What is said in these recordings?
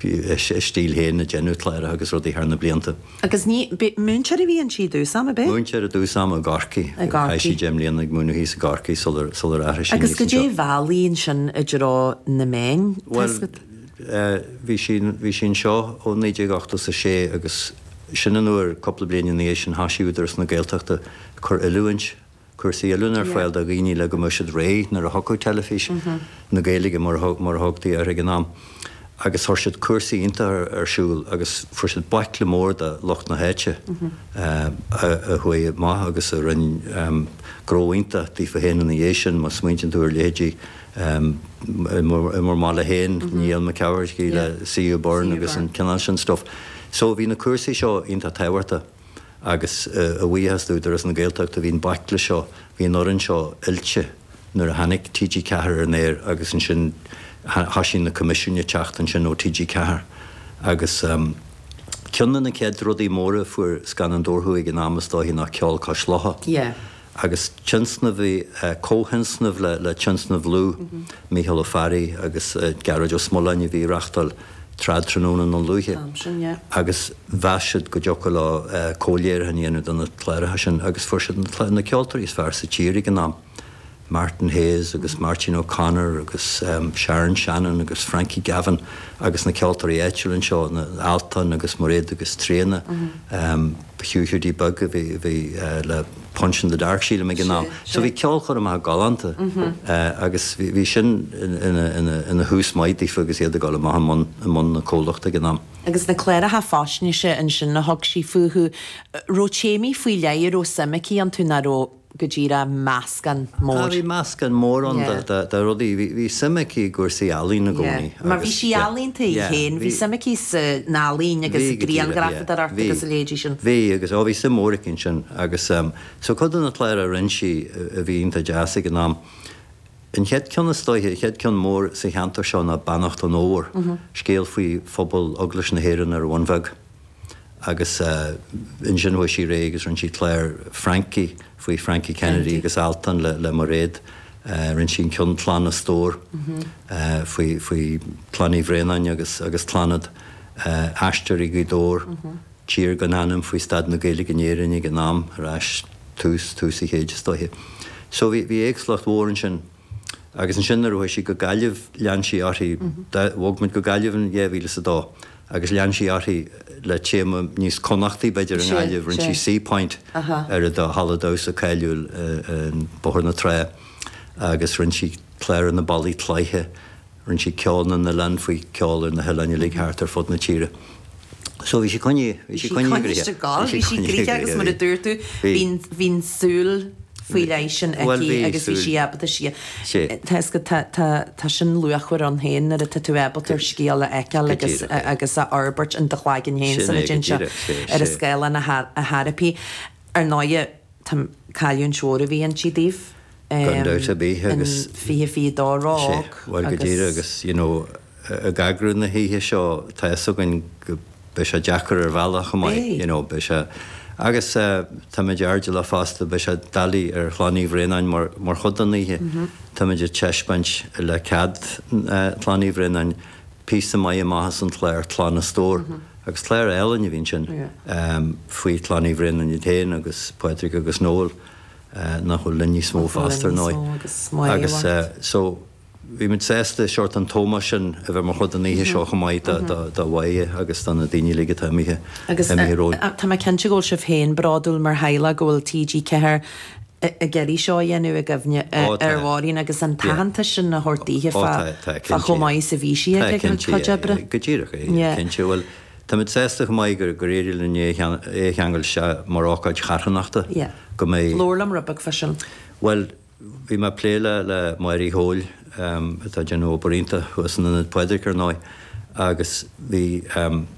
Bhí a stíl féin ag déanamh cláracha agus rudaí thar na blianta. Agus ní, b'é, múinteoir a bhí anseo i dtús ama, b'é? Múinteoir i dtús ama i gCorcaigh. I gCorcaigh. Chaith sí deich mbliana ag múineadh thíos i gCorcaigh sular, sular athraigh sí aníos anseo. Agus goidé a mheall í ansin i dtreo na meán, Bhuel, bhí sí, bhí sí anseo ó naoi déag ochtó is a sé agus sin an uair, cúpla bliain ina dhiaidh sin, thosaigh Údarás na Gaeltachta ag cur oiliúint cúrsaí oiliúna ar fáil do dhaoine le go mbeadh siad réidh nuair a thiocfadh Teilifís na Gaeilge, mar a thugtaí uirthi ag an am, agus chuir siad cúrsaí iontacha ar siúl agus fuair siad baicle mór de lucht na háite a chuaigh amach agus a rinne gnó iontach daofa féin ina dhiaidh sin. Má smaointíonn tú ar leithéidí i bhur mbaile féin, Niall Mac Eachmharcaigh le CU Burn agus an cineál sin stuif. So bhí na cúrsaí seo iontach tábhachtach. agus a bhuíochas d'Údarás na Gaeltachta, bhí an baicle seo, bhí an fhoireann seo oilte nuair a tháinig TG4 ar an aer agus ansin thoisigh na coimisiúin ag teacht ansin ó TG4 agus ceann de na chéad rudaí móra a fuair Scannáin Dobharchú ag an am is dóiche ná Ceol Cois Locha. agus tionscnamh comhthionscnamh le Tionscnamh Lugh Mícheál Ó Fearraigh agus Gearóid Ó Smoláin a bhí a reáchtáil Trad Tráthnóna i nDún Lúiche agus mheas siad go dtiocfadh leo comhléiriúchán a dhéanamh de na cláracha sin agus fuair siad na ceoltóirí is fearr sa tír ag an am, Martin Hayes agus Máirtín O'Connor agus Sharon Shannon agus Frankie Gavin agus na ceoltóirí áitiúla anseo, na Altan agus Mairéad agus Tríona. Hugh Hiúdaí Beag a bhí le Punch in the Dark sílim ag an am. So bhí ceolchoirmeacha galánta agus bhí sin ina thús maith daofa agus iad ag dul amach i mbun na comhlachta ag an am. Agus na cláracha faisnéise ansin a thug sí fúthu, raibh téamaí faoi leith a raibh suim aici iontu, nach raibh? nó an raibh meascán mór. Bhí meascán mór ann de rudaí. Bhí suim aici i gcúrsaí ealaín i gcónaí. Bhí. Mar bhí sí ealaíonta í féin. Bhí suim aici san ealaín agus i ngrianghrafadóireacht agus a leithéidí sin. Bhí agus, ó bhí suim mhór aici ansin agus so cuid de na cláir a rinne sí a bhí iontach deas ag an am, an chéad ceann is dóiche, an chéad ceann mór sa cheantar seo ná Beannacht an Fhómhair, scéal faoi phobal Eaglais na hÉireann ar an Bhun Bheag. Agus ansin chuaigh sí ar aghaidh agus rinne sí clár Frankie faoi Frankie Kennedy agus Altan le Mairéad. Rinne sí an ceann Clann as Dobhar faoi Clann Uí Bhraonáin agus Clannad, Aisteoirí Ghaoth Dobhair, Tír gan ainm faoi staid na Gaeilge in Éirinn ag an am, ar ais tús, tús an chéid is dóiche. So bhí éagsúlacht mhór ansin. Agus ansin nuair a chuaigh sí go Gaillimh lean sí uirthi, bhog muid go Gaillimh in dhá mhíle is a dó, agus lean sí uirthi le téama níos Connachtaí b'fhéidir i nGaillimh, rinne sí Seapoint ar an halla damhsa cáiliúil in Bóthar na Trá agus rinne sí clár ar na ballaí cloiche, Rinne sí ceol na n-oileán faoi cheol ar na hoileáin uilig thart ar fud na tíre. So bhí sí, agus mar a dúirt tú, bíonn, bhí an tsúil faoi leith sin aici. Bhuel, bhí súil. Agus bhí sí ábalta sí, tá, is go, tá, tá, tá sin luachmhar ann féin, nuair atá tú ábalta an scéal a fheiceáil agus, agus a fhorbairt in do chloigeann féin sula dtéann sé ar an scáileán a, a, a fhorbairt. Ar ndóigh, tá, cailliúint mhór a bhí inti daoibh. gan dabht ar bith, agus sé, bhuel, go díreach, agus, you know, ag eagrú na hoíche seo, tá fhios againn go, beidh sé deacair ar bhealach chomh maith, you know, beidh sé, agus táimid airdeallach fosta, beidh sé doiligh ar Chlann Uí Bhraonáin mar, mar chuid den oíche, táimid ag taispeáint, le cead Chlann Uí Bhraonáin, píosa maith amach as an gclár Clann is Tobhar, agus clár álainn a bhí ann sin, faoi Chlann Uí Bhraonáin iad féin agus Pádraig agus Noel. nach bhfuil linn níos mó fosta ar ndóigh agus so bhí muid sásta seort an t-ómós sin a bheith mar chuid den oíche seo chomh maith do Mhoya agus do na daoine uilig atá imithe romhainn. Tá mé cinnte go bhfuil sibh féin bródúil mar theaghlach go bhfuil TG4 ag iarraidh seo a dhéanamh i gcuimhne ar Mháirín agus an t-aitheantas sin a thabhairt daoithe fá chomh maith is a bhí sí ag a cuid oibre. Go díreach, cinnte. Táimid sásta go maith gur éirigh linn é a cheangal isteach mar ócáid charthanachta, go mbeidh. Labhair liom rud beag fá sin. Bhuel, bhí mé ag plé le Mary Coyle, atá ag déanamh obair iontach thuas in Ionad Phádraig, ar ndóigh, agus bhí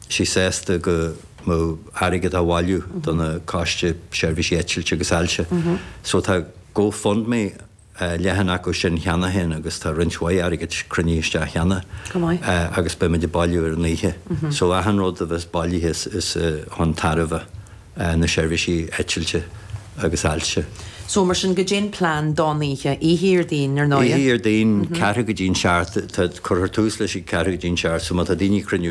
sí sásta go mbeadh airgead á bhailiú don Choiste Seirbhísí Eitilte agus Ailse. So tá Go Fund Me. leathanach ansin cheana féin agus tá roinnt mhaith airgid cruinnithe isteach cheana agus beimid ag bailiú ar an oíche. So achan rud a bheas bailithe is chun tairbhe na seirbhísí eitilte agus ailse. So mar sin, caidé an plean don oíche, oíche Dhéardaoin ar ndóigh? Oíche Dhéardaoin, ceathrú go dtí'n seacht, tá, cuirfear tús leis ag ceathrú go dtí'n seacht so má tá daoine ag cruinniú